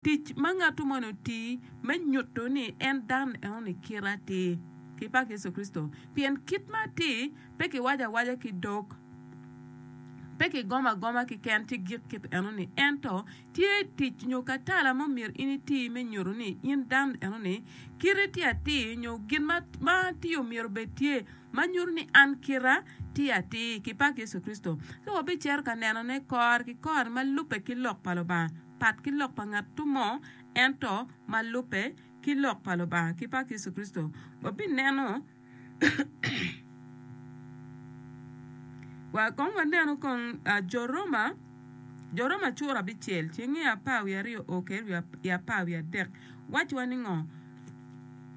Tic ma ngat moni oti me nyutu ni en dan enoni i kite atir, ki pak Yecu Kricito, pien kit ma atir pe ki waco awaca ki dog, pe ki gomo agoma ki ken ci gik kit enoni, ento tye tic nyo katala ma omyero in iti me nyutu ni in dan enoni kiti tye atir nyo gin ma ma atir omyero obed tye ma nyutu ni an kita tye atir ki pak Yecu Kricito. Ci wabi cito ka nenone kor ki kor ma lube ki lok pa Lubanga. pat ki lok pa ngat mo ento ma lubbe ki lok pa Lubanga ki pa Yecu Kricito, wabineno wa kong wanenu kong Jo Roma, Jo Roma cura abicel ceng nge apar wiye aryo o kede wiye apar wiye adek wacci wa ni ngo?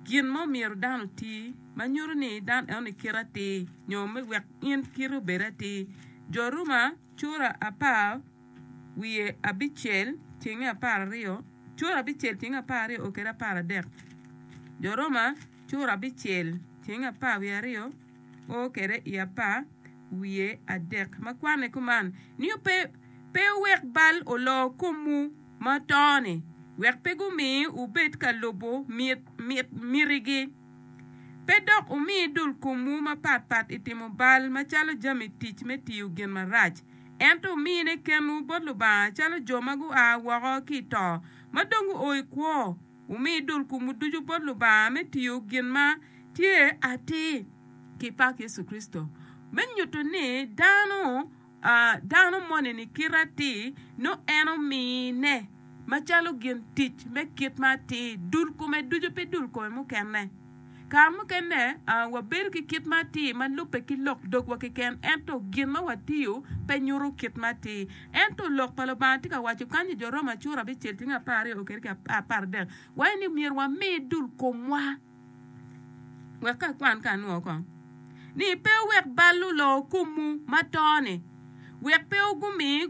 Gin ma omyero dano oti ma nyuto ni dano eno ni kite atir nyo me wek in kite obed atir, Jo Roma cura apar. wiye abicel cenge apar aryo, cura abicel cenge apar aryo o kede apar adek. Jo Roma cura abicel cenge apar wiye aryo o kede i apar wiye adek. Ma kwanne kuman ni pe pe wek bal olo komwu ma to-ni, wek pe gumi wubed ka lubo mit mit mitigi. Pe dok wumi dul komwu mapatpat i timo bal macalo jami tic me tiyo gin marac. ento wumine kenwu bot Lubanga calo jo ma gua woko ki i to, ma dong guo i kwo. Wumi dul komwu ducu bot Lubanga me tiyo gin ma tye atir ki pak Yecu Kricito, me nyuto ni dano dano moni-ni kite atir nongo en omine macalo gin tic me kit ma atir, dul kome ducu, pe dul kome mukene. Kare mukene wabedo ki kit me atir ma lubbe ki lok dogwa keken ento gin ma watiyo pe nyuto kit me atir. Ento Lok pa Lubanga tye ka waco kany i Jo Roma cura abicel ceng apar aryo kede ki apar adek waco ni myero wami dul komwa wek ka kwan ka anwo oko ni pe wek bal olo kumwu ma to-ni wek pe gumi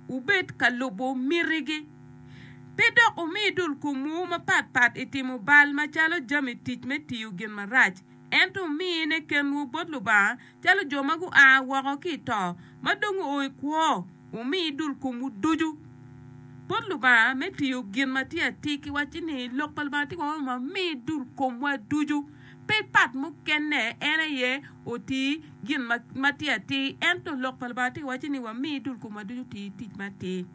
wubed ka lubo mitigi. Pe dok wumi dul komwu mapatpat i timo bal macalo jami tic me tiyo gin marac, ento wumine kenwu bot Lubanga calo jo ma gua woko ki i to ma dong guo i kwo. Wumi dul komwu ducu bot Lubanga me tiyo gin ma tye atir ki wacci ni, Lok pa Lubanga tye kong ma mi dul komwa ducu. Pe pat mukene, en aye oti gin ma tye atir. Ento Lok pa Lubanga tye ka wacci ni wami dul komwa ducu oti tic ma atir.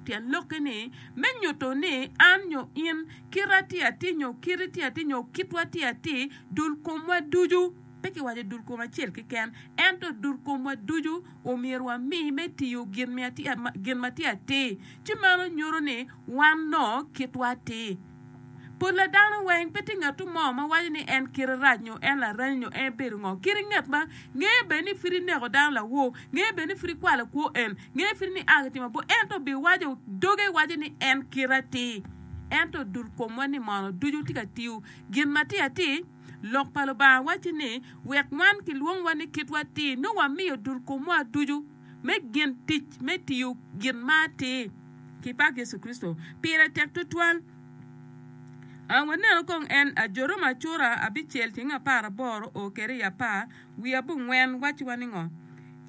Tyen lokke ni, me nyuto ni an nyo in, kita tye atir nyo kiti tye atir nyo kitwa tye atir, dul komwa ducu, pe kiwaco dul kom acel keken, ento dul komwa ducu omyero wami me tiyo gin ma tye atir. Ci meno nyuto ni wan nongo kitwa atir. Pol a dano weng pe tye ngatu mo ma waco ni en kite rac nyo en laranyi nyo en bedo ngo. Kite nget ma ngeye bene ni pud ineko dano lawor, ngeye bene ni pud ikwalo kwo en, ngeye pud ni a ki timo bor ento bi waco doge waco ni en kite atir. Ento dul komwa ni mono ducu tye ka tiyo gin matir atir? Lok pa Lubanga waco ni wek wan kilwongwa ni kitwa atir nyo wamiyo dul komwa ducu. me gin tic me tiyo gin ma atir ki pak Yecu Kricito pire tek tutwal. Wanenu kong en, Ajoro ma Cura abicel ceng apar aboro o keri i apar wiye abongwen wacci wa ningo?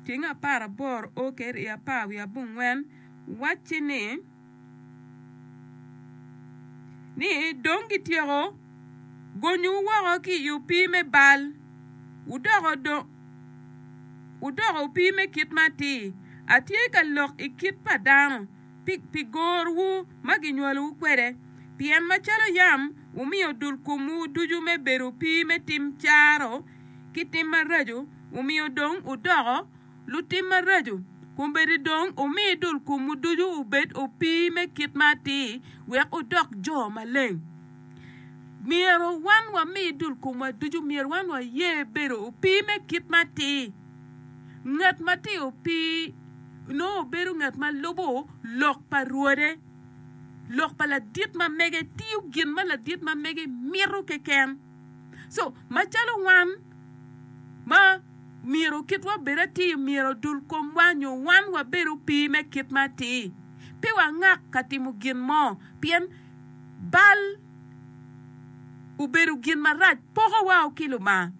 Ceng apar aboro o keri i apar wiye abongwen wacci ni. ni dong gityeko gonyowu woko ki i opii me bal, wudoko dong wudoko opii me kit ma atir. Atye ka lok i kit pa dano pi, pi gorwu ma ginywalowu kwede, pien macalo yam wumiyo dul komwu ducu me bedo opii me tim caro ki tim maraco, omiyo dong wudoko lutim maraco, kombeddi dong omi dul komwu ducu obed opii me kit ma atir wek wudok jo maleng. Myero wan wami dul komwa ducu, myero wan waye bedo opii me kit ma atir. Ngat ma tye opii nongo bedo ngat ma lubo lok pa Rwode, lok pa ladit ma mege, tiyo gin ma ladit ma mege mito keken. So macalo wan ma myero kitwa bed atir myero odul komwa nyo wan wabed opii me kit ma atir, pe wangak ka timo gin mo pien bal obedo gin marac poko wao ki Lubanga,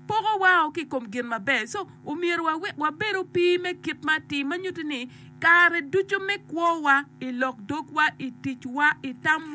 poko wao ki i kom gin maber. So omyero wabed opii me kit ma atir ma nyuti ni kare ducu me kwowa i lok dogwa, i ticwa, i tamwa.